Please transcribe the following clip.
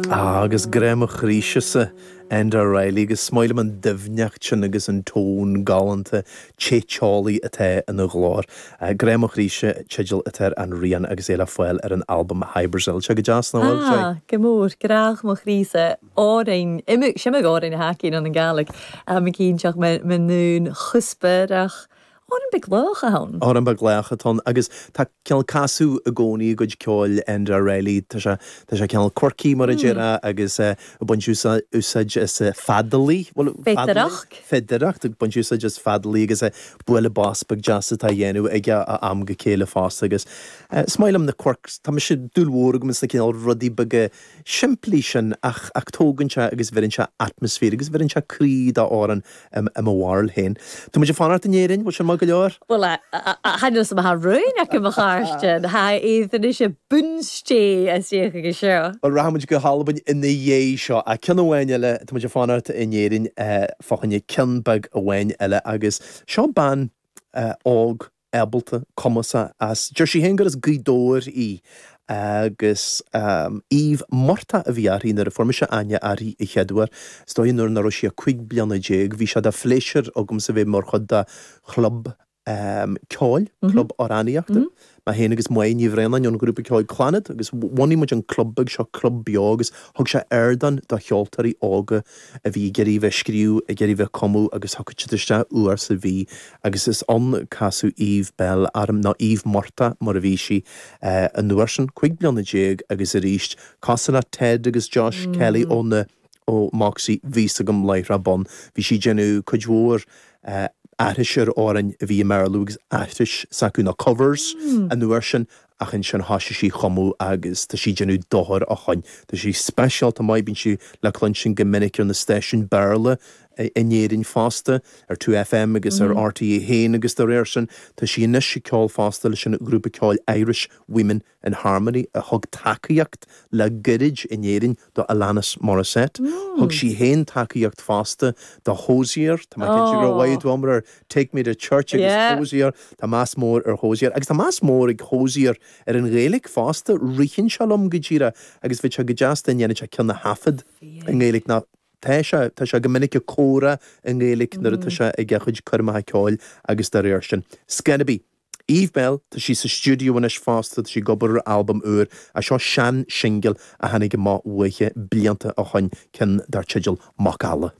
Ah, agus grá mo chroíse-sa, Enda Reilly, agus is maith liom an doimhneacht sin agus an tón galánta, te teolaí atá ina ghlór. Grá mo chroíse, teideal atá ar an rian agus é le fáil ar an albam Hy-Brasil. Tá sé go deas, nach bhfuil, Jay? Ah, go mór. Grá mo chroíse, amhráin, im-sim amhráin a thacaíonn an Ghaelic, am eicínt ach me-me-meanúin chuspa-reach, Amhrán beag lách ann. Amhrán beag lách atá ann agus tá cineál casadh i gcónaí i gcuid ceoil Enda Reilly. Tá sé, tá sé cineál quirky mar a déarfá agus ag baint úsáid as feadalaí, bhuel feadaracht, feadaracht, ag baint úsáid as feadalaí agus bualadh bos beag deas atá á dhéanamh aige ó am go chéile fosta agus is maith liom na quirks, tá mise, dúil mhór agam sna cineál rudaí beaga simplí sin ach, ach tógann sé agus bheireann sé atmaisféar agus bheireann sé croí d'amhrán. I mo bharúil féin, tá muid ag fanacht in Éirinn, bhfuil sin maith go leor? Bhuel, tháinig os mo chomhair rúin aici mo chairde, ha high Aodh anois a búnstí a suíodh aige seo. Bhuel, rachaidh muid go hAlbain ina dhiaidh seo, ach ceann amháin eile, tá muid ag fanacht in Éirinn fá choinne ceann beag amháin eile agus seo bean óg, ábalta, cumasach as. Deir sí féin gur as Gaoth Dobhair í agus Eve Murtagh a bhí uirthi nuair a fuair mise aithne uirthi a chéaduair. Is dóigh nuair nach raibh sí ach cúig bliana déag. Bhí sé de phléisiúr agamsa bheith mar chuid de chlub ceoil, club amhránaíochta, mé féin agus Moya Ní Bhraonáin ón ghrúpa ceoil Clannad agus bhunaigh muid an club beag seo, Club Beo, agus thug sé ardán do cheoltóirí óga. a bhí ag iarraidh bheith ag scríobh, ag iarraidh bheith ag cumadh agus thiocfadh siad isteach uair sa mhí agus is ann a casadh Eve Belle orm, nó Eve Murtagh mar a bhí sí an uair sin, cúig bliana déag agus arís cosúil le Ted agus Jos Kelly ó na, ó Moxie, bhí a fhios agam láithreach bonn, bhí sí ag déanamh cuid mhór aithris ar amhráin a bhí i mBéarla agus aithriseacha, nó covers an uair sin, ach ansin thoisigh sí a chumadh agus tá sí ag déanamh thar cionn. Tá sí speisialta maith, bíonn sí le cluinstin go minic ar na stáisiúin Béarla in Éirinn fosta, ar 2FM agus ar RTÉ 1 agus dá réir sin tá sí anois ag ceol fosta leis an ghrúpa ceoil Irish Women in Harmony a thug tacaíocht le goirid in Éirinn do Alanis Morissette. Thug sí féin tacaíocht fosta do Hozier. Tá mé cinnte go raibh Wyatt Wommack ar Take Me To Church agus Hozier. Tá meas mór ar Hozier. Agus tá meas mór ag Hozier ar an Ghaeilge fosta. Ritheann sé liom go díreach agus bheadh sé go deas dá ndéanfadh sé ceann a thaifead i nGaeilge. Nó tá sé, tá sé go minic ag comhrá i nGaeilge nuair atá sé ag a chuid coirmeacha ceoil agus dá réir sin. It's gonna be. Eve Belle, tá sí sa stiúideo anois fosta, tá sí ag obair ar albam úr, ach seo sean-singil a tháinig amach uaithi blianta ó shoin, ceann dar teideal Macalla.